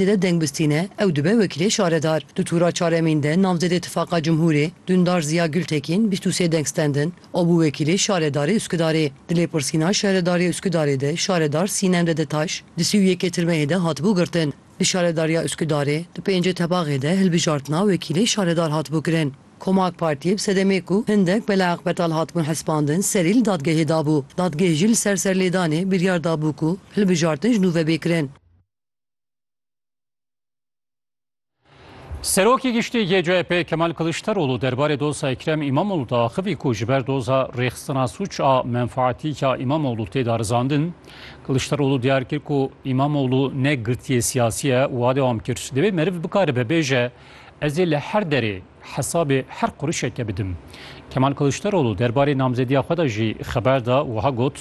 Dede Dengbistîne, ew dibe wekîlê şaredar. Di tûra çaremîn de navzêdê Tifaqa Cumhurê, Dundar Ziya Gultekîn bîst û sê deng stendin, o bû wekîlê şaredarê Uskudarê. Di lêpirsîna şaredarê Uskudarê de şaredar Sînem Dedetaş di sî û yekê tirmeyê de hatibû girtin. Di şaredariya Uskudarê di pêncê tebaxê de hilbijartina wekîlê şaredar hatibû kirin. Koma AK Partiyê bi sedemê ku hindek belaeq betal hatibûn hespandin serî li dadgehê dabû. Dadgeh jî li ser serlêdanê biryar dabû ku hilbijartin ji nû ve bê kirin. Serokê Giştî yê CHP Kemal Kiliçdaroglu derbarê doza Ekrem Îmamoglû de axivî ku ji ber doza rêxistina sûç a menfaatî ya Îmamoglû tê darizandin. Kiliçdaroglu diyar kir ku Îmamoglû ne girtiyê siyasî ye û a dewam kir. Divê meriv bikaribe bêje ez ê li her derê Hesabê her qurişeke bidim. Kemal Kiliçdaroglu derbarê namzediya xwe de jî xeber da û wiha got,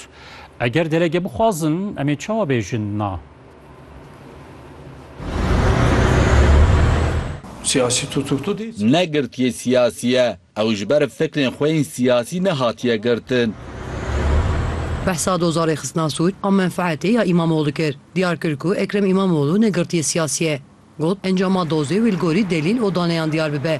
Eger delege bixwazin em ê çawa bêjin na? Siyasî tutuklu dê. Ne girtiyê siyasî ye. Ew ji ber fikrên xwe yên siyasî nehatiye girtin. Behsa dozarê xistina sûc a menfeetê ya Îmamoglû kir. Diyar kir ku Ekrem Îmamoglû ne girtiyê siyasî ye. Got, Encama dozê wî li gorî delîl û daneyan diyar bibe.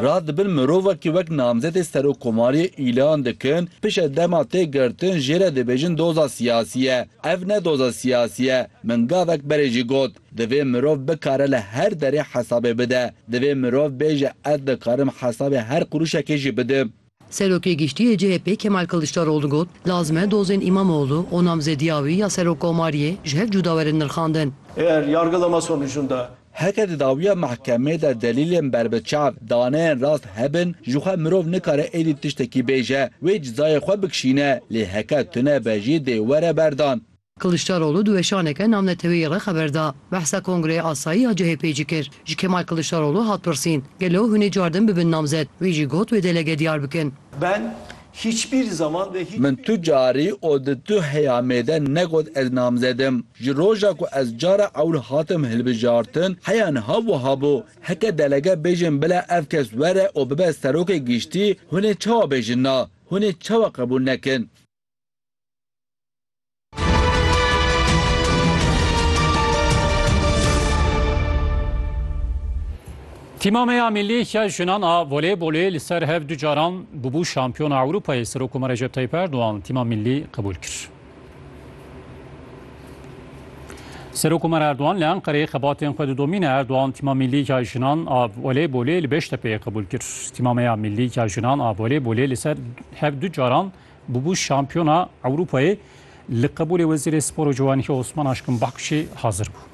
Rad di bin mirovekî wek namzetê Serokkomariyê îlan dikin, pişe dema tê girtin jê re dibêjin doza siyasî ye. Ev ne doza siyasî ye. Min gavek berê jî got, divê mirov bikare li her derê hesabê bide. Divê mirov bêje ez dikarim hesabê her qurûşekê jî bidim. Serokê Giştî yê CHP'ê Kemal Kiliçdaroglu got, Lazim e dozên Îmamoğlu û Namze Dîyawî ya Serokkomariyê ji hev cuda werin nirxandin. Eger yargıda me sonucunda. Heke di dawiya mehkemê de delîlên berbiçav daneyên rast hebin, jixwe mirov nikare êdî tiştekî bêje, wê cizayê xwe bikişîne, lê heke tune be jî dê were berdan. Kiliçdaroglu di weşaneke navneteweyî re xeber da. Behsa Kongreya Asayî ya CHP'ê jî kir. Ji Kemal Kiliçdaroglu hat pirsîn, Gelo hûn ê cardin bibin namzet? Wî jî got wê delege diyar bikin. Ben hiçbir zaman ve hiç. Min tu carî û di tu heyamê de negot ez namzed im. Ji roja ku ez cara ewil hatim hilbijartin, heya niha wiha bû. Heke delege bêjin bila ev kes were û bibe serokê giştî, hûn ê çawa bêjin na? Hûn ê çawa qebûl nekin? Tîma me ya milî ya jinan a voleybolê li ser hev du caran bûbû şampiyona Ewropayê Serokoma Recep Tayyip Erdogan tîma milî qebûl kir. Serokoma Erdogan li Enqereyê xebatên xwe didomîne Erdogan tîma milî ya jinan a voleybolê li Beştepeyê qebûl kir. Tîma me ya milî ya jinan a voleybolê li ser hev du caran Bûbû şampiyona Ewropayê li qebûlê Wezîrê Spor û Ciwanî Osman Aşkın Bakkuşê hazir bû.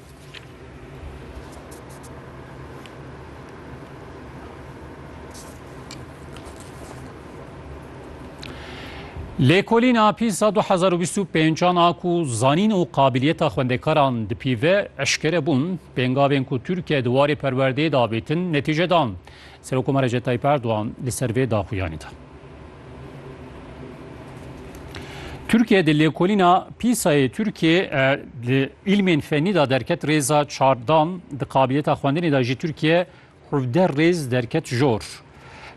Lêkolîna pîsa 2025 a ku zanîn û qabiliyeta xwendekaran dipîve eşkere bûn, pêngavên ku Tirkiye di warê perwerdeyê dabêtin netîce dan. Serokomar Recep Tayyip Erdogan li ser vê daxuyanî da. Tirkiye di lêkolîna pîsayê Tirkiyê di îlmên fenî de derket rêza çar dan, di qabiliyeta xwendinê de jî Tirkiye hevdeh rêz derket jor.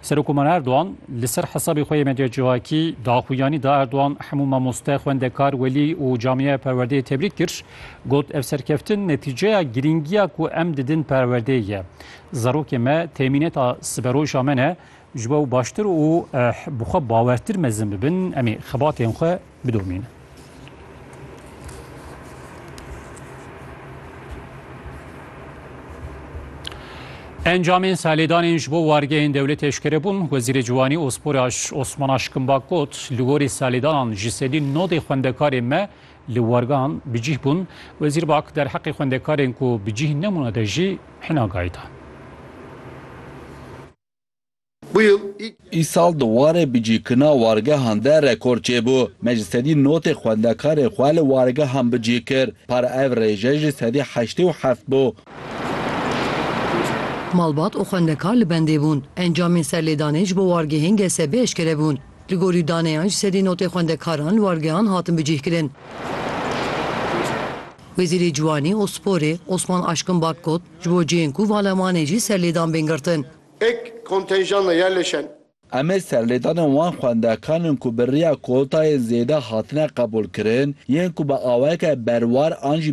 Serokoman Erdogan li ser hesabê xwe yê medya civakî daxuyanî da Erdogan hemû mamoste, xwendekar, welî û camiyeya perwerdeyê tebrîk kir. Got ev serkeftin netîceya girîngiya ku em didin perwerdeyê ye. Zarokê me temîneta siberoja me ne, Ji bo baştir û bi xwe bawertir mezin bibin, em ê xebatên xwe bidomînin. Encamên salêdanên ji bo wargeyên dewletê eşkere bûn. Wezîrê Ciwanî û Sporê Osman Aşkimbak got, li gorî salêdanan ji sedî nodê xwendekarên me li wargehan bi cîh bûn. Wezîr Bak derheqê xwendekarên ku bi cîh nebûne de jî hina gayî da. Îsal di warê bicîkina wargehan de rekor çêbû. Me ji sedî notê xwendekarên xwe li wargehan bicî kir. Para ev rêje jî sedî heştê û heft bû. Malbat û xwendekar li bendê bûn. Encamên serlêdanê ji bo wargehên GSB eşkere bûn. Li gorî daneyan ji sedî notê xwendekaran li wargehan hatin bicîhkirin. Wezîrê Ciwanî û Sporê Osman Aşkin Bak got, Ji bo cihên ku vala wan ê jî serlêdan bên girtin. Ek kontenjana yerleşen. Em ê serlêdanên wan xwendekan in ku bi riya kotayên zêde hatine qebûlkirin, yên ku bi awayeke berwar an jî.